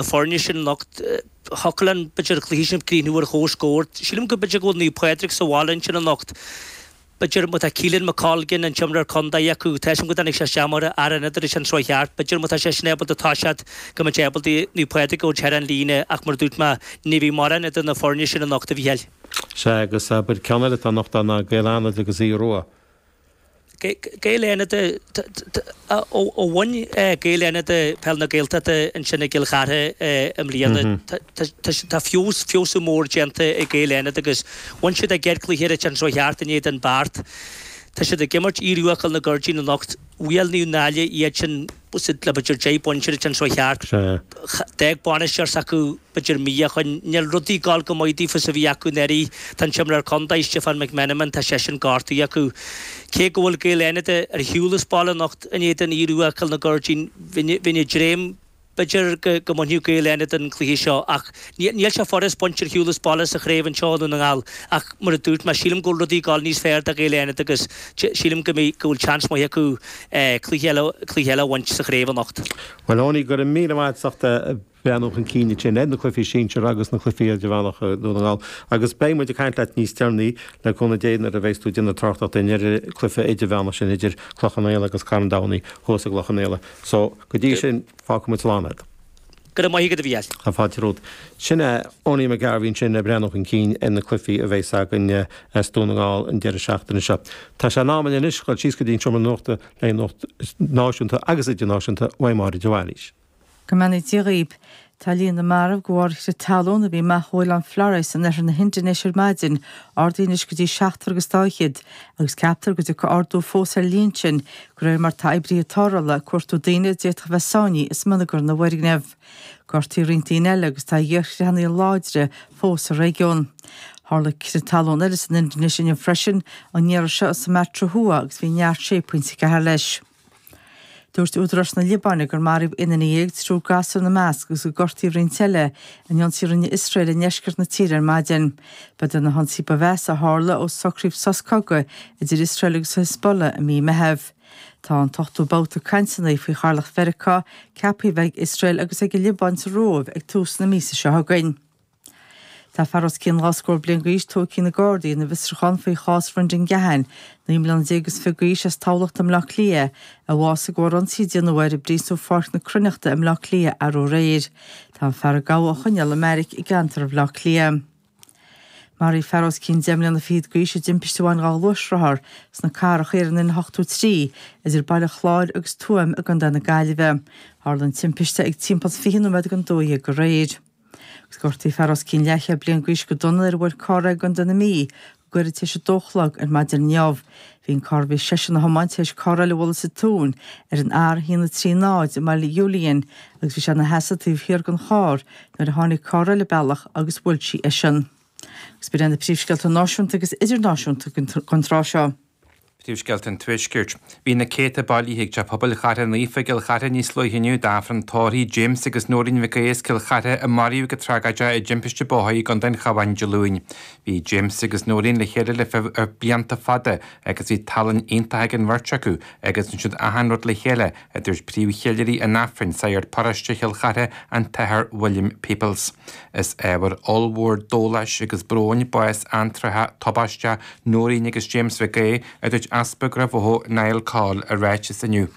na foirne sin anocht thiocfadh an b'fhéidir an cluiche sin ag críochnú ar chomhscór. Sílim go b'fhéidir go bhfuil Naomh Pádraig sa bhaile ansin anocht. B'fhéidir má tá Caolan McColgan an t-imreoir contae acu tá a fhios agam go dtáinig sé isteach mar fhear ionad an tseachtain seo chuaigh thart. B'fhéidir má tá seisean ábalta toiseacht go mbeidh sé ábalta Naomh Pádraig a thabhairt thar an líne ach mar a dúirt mé ní bheidh mórán idir na foirne sin anocht a Mhícheáil. Sea agus abair ceann eile atá anocht ann ná Gaeil Fhánada agus Aodh Rua. Gaeil Fhánada ó bhain Gaeil Fhánada Peil na Gaeltachta ansin i gCill Chartha i mbliana. Tá feabhas, feabhsú mór déanta ag Gaeil Fhánada agus bhain siad a gcéad chluiche an tseachtain seo chuaigh thart in éadan Beart. Tá siad ag imirt Aodh Rua Chúil na gCuirridín anocht. Bhuail Naomh Náille iadsan. Bhuail siad le b'fhéidir deich bpointe an tseachtain seo chuaigh thart. D'fhág bainisteoir s'acu b'fhéidir mí ó shin. Níl rudaí ag gabháil chomh maith daofa 's a bhí acu anuraidh. Tá an t-imreoir contae, Stiofán McMenamin, tá seisean gortaithe acu. Cé go bhfuil Gaeil Fhánada ar shiúl as baile anocht in éadan Aodh Rua Chúil na gCuirridín bheinn ag dréim b'fhéidir go mbainfeadh Gaeil Fhánada an cluiche seo ach níl sé furast baint ar shiúl as baile sa chraobh anseo i nDún na nGall ach mar a dúirt mé sílim go bhfuil rudaí ag gabháil níos fearr do Ghaeil Fhánada agus sílim go bhfuil seans maith acu. cluiche eile a bhaint sa chraobh anocht. Bhuel Eoiní, go raibh míle maith agat as breathnú chun cinn dúinn ar na cluichí sinsir agus na cluichí idirmheánacha Dhún na nGall agus beidh muid ag caint leat níos deireanaí le cúnamh Dé nuair a bheas tú ag déanamh tráchtaireachta dúinn ar an gcluiche idirmheánach sin idir Cloich Cheann Fhaola agus Carn Domhnaigh thuas i gCloich Cheann Fhaola. So, go dtí sin, fágfaidh muid slán a'd. Go raibh maith agat, a Mhicheáil. Tá fáilte romhat. Sin é Ownie McGarvey ansin ag breathnú chun cinn ar na cluichí a bheas againn as Dún na nGall an deireadh seachtaine seo. Tá sé in am againn anois dhul síos go dtí an seomra nuachta le nuacht náisiúnta agus idirnáisiúnta uaidh Máire de Bhailís. Go mbeannaí Dia dhaoib. Tá líon na marbh de bharr crith talún a bhí amach ó oileán Flores in oirthear na hIndinéise ar maidin ardaithe anois go dtí seachtar agus dá fhichead agus ceaptar go dtiocfaidh ardú fós ar an líon sin De réir mar tá oibríthe tarrthála ag cuartú daoine a d'fhéadfadh a bheith sáinnithe i smionagar na bhfoirgneamh. Gortaíodh roinnt daoine eile agus tá iarchreathanna láidre fós sa réigiún. Tharla crith talún eile san Indinéis inniu freisin, an iarraidh seo i Sumatra Thuaidh agus bhí neart 6.4 leis. Dúirt údaráis na Liobáine gur maraíodh aon duine dhéag, triúr gasúr ina measc, agus gur gortaíodh roinnt eile in ionsaí a rinne Iosrael i ndeisceart na tíre ar maidin. Ba iad na hionsaithe ba mheasa a tharla ó socraíodh sos cogaidh idir Iosrael agus Hezbollah i mí Meitheamh. Tá an t-ochtú babhta cainteanna faoi Chathaoirleacht Mheiriceá ceaptha a bheith ag Iosrael agus ag an Liobáin sa Róimh ag tús na míosa seo chugainn. Tá fear os cionn dhá scór bliain d'aois tógtha ag na Gardaí ina bhfiosrúchán faoi chás Bhrendan Gahan, naoi mbliana déag is fiche d'aois as Tamhlacht i mBleá Cliath, a bhásaigh de thoradh ionsaí a déanadh air i bPríosún Pháirc na Cruithneachta i mBleá Cliath arú aréir. Tá an fear a gabhadh á choinneáil i mbeairic i gceantar Bhaile Átha Cliath. Maraíodh fear os cionn deich mbliana fichead d'aois i dtimpiste a bhain dhá ghluaisrothar sna Carracha Thiar ar an N83 idir Baile Chláir agus Tuaim i gContae na Gaillimhe. Tharla an timpiste ag timpeall 20 nóiméad don 12 aréir. Gortaíodh fear os cionn leathchéad bliain d'aois go dona nuair a bhuail carr é i gContae na Mí, gairid tar éis a dó a chlog ar maidin inniu. Bhí an carr a bhí seisean a thiomáint tar éis carr eile a bhualadh sa tóin ar an R130 i mBaile Iúiliáin agus bhí sé ina sheasamh taobh thiar den charr nuair a tháinig carr eile an bealach agus bhuail sí eisean. Agus ba iad na príomhscéalta náisiúnta agus idirnáisiúnta don tráth seo. Príomhscéalta an Tuaiscirt. Bhí na céadta bailithe ag Teach Pobail Chartha Naofa i gCill Chartha níos luaithe inniu d'Aifreann Tórraimh James agus Noreen Mhic Aodha as Cill Chartha a maraíodh go tragóideach i dtimpiste bóthair i gContae an Chabháin Dé Luain. Bhí James agus Noreen le chéile le blianta fada agus bhí tallann iontach ag an bheirt acu agus rinne siad achan rud le chéile, a dúirt príomhcheiliúraí an Aifrinn, sagart paróiste Chill Chartha, an tAthair William Peoples. Is ábhar ollmhór dóláis agus bróin bás antráthach tubaisteach Nóirín agus James Mhic Aodha, a dúirt Easpag Ráth Bhoth Niall Coll i ráiteas inniu.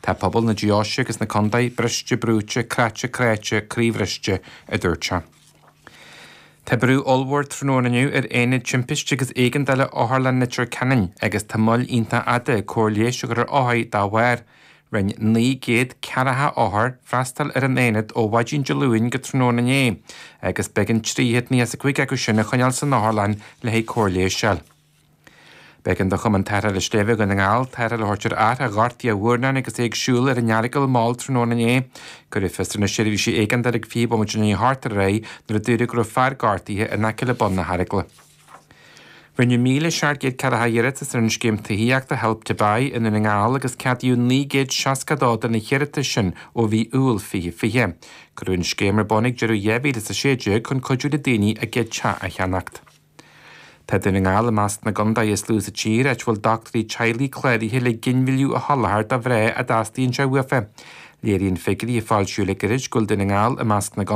Tá pobal na Deoise agus na contae briste brúite, croite cráite, croíbhriste, a dúirt sé. Tá brú ollmhór tráthnóna inniu ar Aonad Timpiste agus Éigeandála Otharlann Leitir Ceanainn agus tá moill iontach fhada cóir leighis a chur ar othair dá bharr. Rinne naoi gcéad ceathracha othar freastal ar an Aonad ó mhaidin Dé Luain go tráthnóna inné agus b'éigean trí chéad nócha is a cúig acu sin a choinneáil san otharlann le haghaidh cóir leighis a fháil. B'éigean do Chumann Tarrthála Sléibhe Dhún na nGall tarrtháil a thabhairt ar fhear a ghortaigh a mhurnán agus é ag siúl ar an Earagail mall tráthnóna inné. Cuireadh fios ar na seirbhísí éigeandála ag fiche bomaite i ndiaidh a hocht aréir nuair a dúradh go raibh fear gortaithe in aice le bun na hEaragla. Rinneadh míle seacht gcéad ceathracha iarratas ar an scéim tithíochta Help to Buy i nDún na nGall agus ceadaíodh 962 de na hiarratais sin ó mhí Iúil 2020. Cuireadh an scéim ar bun ag deireadh 2016 chun cuidiú le daoine a gcéad teach a cheannacht. Tá Dún na nGall i measc na gcontae is lú sa tír áit a bhfuil dochtúirí teaghlaigh cláraithe le ginmhilleadh a sholáthar do mhná a dteastaíonn sé uafa. Léiríonn figiúirí a foilsíodh le gairid go bhfuil Dún na nGall i measc na.